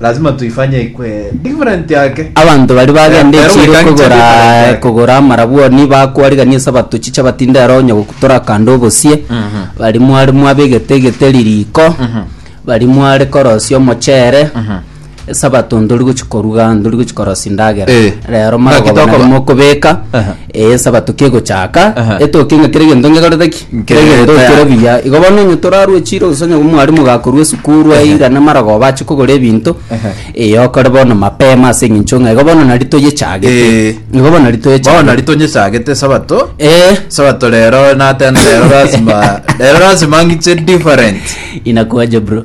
Lazima tuifanye ikue different yake. Abanto baria bagenda Eh, echiiro erobeka kogora nche different yake. kogora amarabwoni bakoarigan'ia esabato chiche batinde aro onye gokutora akande obosie baria mware mwabegete egeteri riko baria mware korosia omochere esabato ntori gochia koruga ntori gochia korosia endagera Eh. rero Naki marogoba tokora- naria mokobeka Aha. Esabato kegochaka, Aha. etoke ng'a kera egento ngekorete ki? Nkere Kera egento tayari. kere buya. Igo bono onye torarue chiro gose onye omwarimu gakorua esukuru aira namarogoba ache kogora ebinto, Aha. eh, okore bono mapema ase eng'encho ng'a igo bono nari toyechagete. Eh. Igo bono nari Bono toyechagete. nari tonyechagete esabato Eh, sabato rero natene rero lazima rero lazima ngiche different inakwaje bro?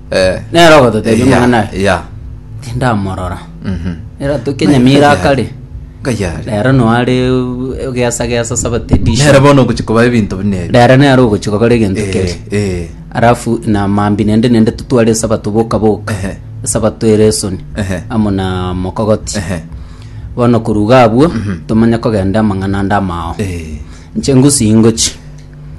Eh, Nero ogototebia eya, omong'ana aye. eya. tindamorora Mhm. eratuke Ng'a- nyamira ng'a- akare ng'a yare. rero noare geasa geasa saba Nere tedisha bono ogochi koba ebinto buna ebi. rero nero ogochi gokora egento Eh, keri eh, arafu na mambi nende nende tutware esabato boka boka Ehe. esabato ere esoni Ehe. amo na mokogoti ehe, bono koruga abwo tomanye kogenda amang'ana ande amao eh. nche ngusi ingochi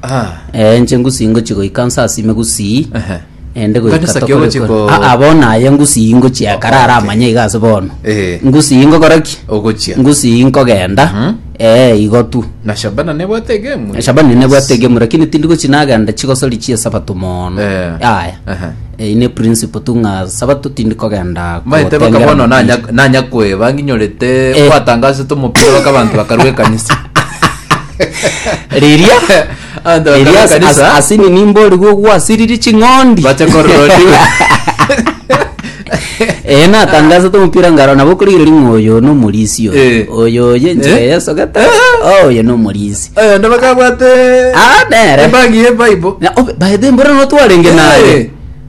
Ah, Eh, inche ngusii ngochi goika nse asime gusii ehe. ende Ngani goika saki ogochi ko- aa bono aye ngusii ngochi ekare Oh, ara okay. amanye iga ase bono Eh. ngusii ngokora ki Ogochia. ngusii nkogenda Mhm. eh igo tu Na Shabana nebwate egemu. shabani nebwate egemu lakini tindi gochi nagenda chigosori chia sabato mono Eh. aya Ehe. Eh, ine principle tu ng'a sabato tindi kogenda maete gotengera bakabono mupira. nanya nanya kweba nginyorete Eh. kwatangasete omopira baka abantu bakarwa ekanisa riria Abanto riria bakara as- as- ekanisa asini nimborigwe gwasiriri ching'ondi bache kororodiwa ee natangasete omopira ngaro nabo okorigereria ng'a oyo nomorisi oyo Eh. oyo oye enchera Eh. yesogete Ah, oyo nomorisi oyo ndo bakabwate Ah, nere. ebagi ye bible Na- obe- bae- mbora notwarenge naye Eh.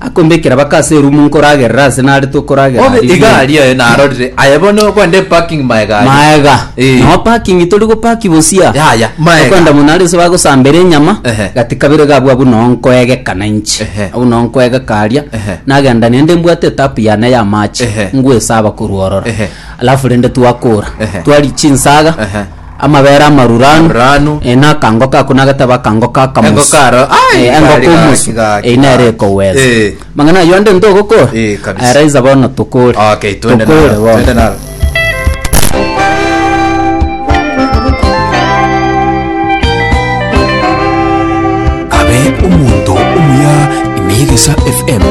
Akombekera baka ase erumu nkoragerera ase narete okoragera Bobe aria. egari yaye narorire aye bono okwenda eparking ma egari maega Eh. no parking tori gopaki bosia Yaya, maega. okwenda mono aria ase bagosambera enyama Ehe. gati kabere iga abwo abwo noo nkoegekana inche Ehe. abwo noo nkoegeka aria Ehe. nagenda naende mbwate etapu yane ya amache Ehe. ngwesaba korwa ororo Ehe. alafu rende twakora Ehe. twari chinsaga Ehe. Amabere amaruranu. Maruranu. Eh, na akango kako nagateba akango ka kamusi. Engo karo, ai, Eh, engo gari komusi. gaki, gaki, Eh, nere gaki. ekoweza. Eh. Mang'ana ayio ande ntogokora. Eh, kabisa. Eraiza bono tokore. Okay, twende Tokore nalo, bono. twende nalo. abe omonto omuya ime y'egesa fm